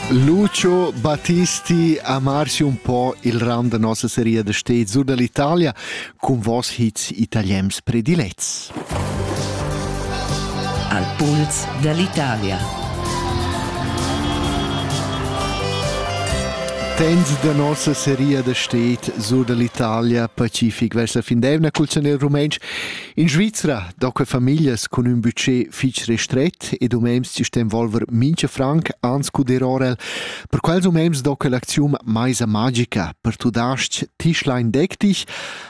Lucio Battisti ha marsi un po il round da nossa seria da stez sur dall'Italia cun vos hits italiens predilets. Al puls dall'Italia. Tens da nossa seria da stez sur dall'Italia Pacific verso la fin d'evna cul zanel rumentsch In Svizra da que famiglias cun ün budget fich restret ed umems chi sten volver mincha franc ans cudir orel, per quels umems do que l'aczium Maisa magica, per tudasc Tischlein deck dich,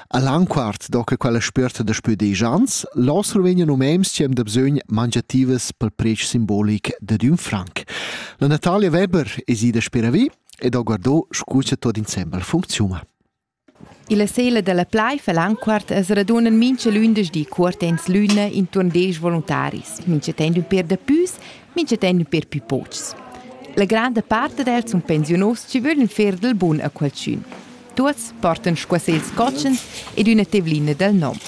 a Langquart do que quella spüerta da spüdegiants, là survegnan umems chi am da bsögn mangiativas pel presch simbolic dad ün franc. La Natalia Weber es ida speravi ed ho guardò scu cha tuot insembel funcziuna. Illa sela da la plaiv a Lanquart as radunan mincha lündeschdi cuortends l'üna intuorn desch voluntaris, minchatant ün per dapüs, minchatant ün per pü pochs. La granda part d'els sun pensiunos chi vöglan fer dal bun a qualchün. Tuots portan squasels cotschens ed üna tevlina dal nom.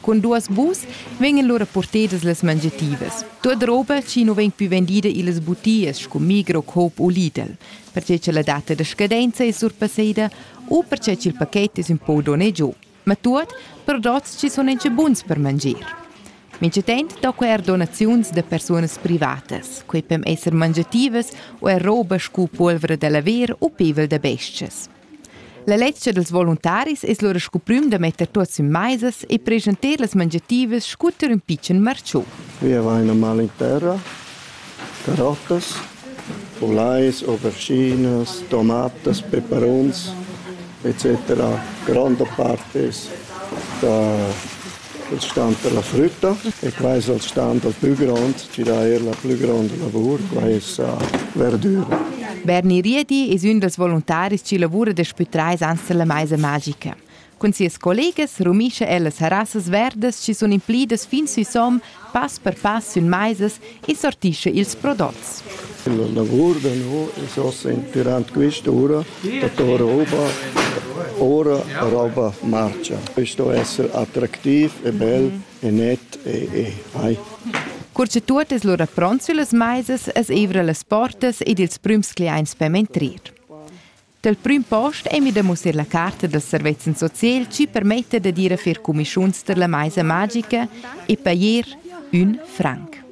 Cun duas bus vegnan lura purtedas las mangiativas. Tuot roba chi nu vegn pü vendida illas butias scu Migro-Coop u Lidl, perche cha la data da scadenza es surpasseda u perche cha'l paket es ün po donè giò, ma tuot prodots chi sun incha buns per manger. Minchatant do quai eir donaziuns da persunas privatas, quai pem esser mangiativas u eir roba scu pulvra da laver u pevel da bes-chas. La lezcha dals voluntaris es lura scu prüm da metter tuots in maisas e preschanter las mangiativas scunter ün pitschen marciu. Wir vaina mal in terra, carottas, ulais, auberginas, tomatas, peperuns, etc. Gronda part es da Il stand dalla frütta e quai es il stand dal plü grond, chi dà eir la plü gronda lavur, quai es verdüra. Berni Riedi es ün dals voluntaris chi lavura daspü trais ans dalla maisa magica. Cun sias collegas rumischa ella sarassas verdas chi sun implidas fin sü som Pass per pass sün maisas e sortischa ils prodots. La lavur da no es ossa inpirant quista ura, dator roba, ora roba marcha. Questo esser attractiv e bel e net e, e ai. Cur che tuot es lura pront süllas maisas, es eivra las portas ed ils prüms cliaints per mentrir. Dal prüm post ei mi da mussar la carta da servezzan social chi permetta da dir a fer cumischuns tar la maisa magica e pajer ün franc.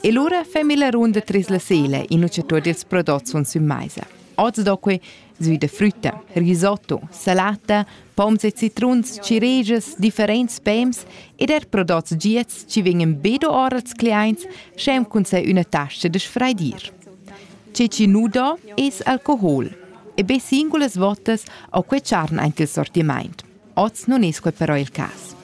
E lura fa mi la runda tras la sela in ucciatur dils prodots sun sün maisa. Oz do que sui da frütta, risotto, salata, poms e citruns, cirejas, differents pems ed er prodots giats chi vegnan be do ora als cliaints, sch'em cun sai üna tasta da sfraidir. Tge chi nu do es alcohol. E be singulas votas ho que tscharn aint il sortimaint. Oz nun es quel però il cas.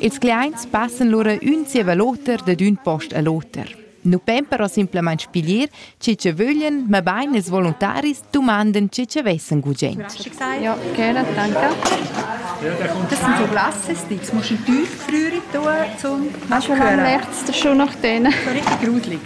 Ils cliaints passan lura ün zieva l'oter dad ün post a l'oter. Nu pon però simplamaing spiglier chi cha vöglan, mabain ils voluntaris dumandan chi cha vessan gugent. Ja, gerne, danke. Das sind so Glasses, das musst du tief früher tun, zum Manchmal merkt es schon nach denen. So richtig gruselig.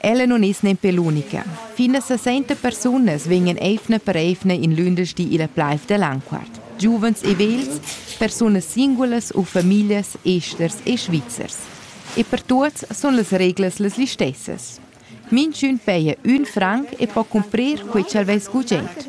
Ella non es nempe l'unica. Fin da sessenta persunas vegnan eivna per eivna in lündeschdi illa plaiv da Lanquart. Giuvens e vegls, persunas singulas u famiglias esters e svizzers. E per tuots sun las reglas las listessas. Minchün peja ün franc e po cumprir quai ch'el vess gugent.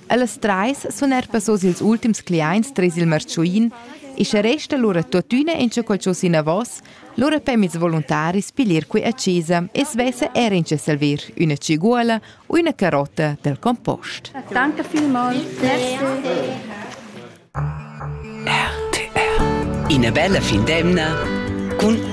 Ellas trais sun eir passos ils ultims cliaints tres il marchuin e sche resta lura tuottüna inchaqual chos inavos, lura pem ils voluntaris pilir qui a chesa e svesse er incha salver üna ciguola u üna carotta dal compost. Danke vielmals. Grazie. RTR. Ina bella fin d'emna cun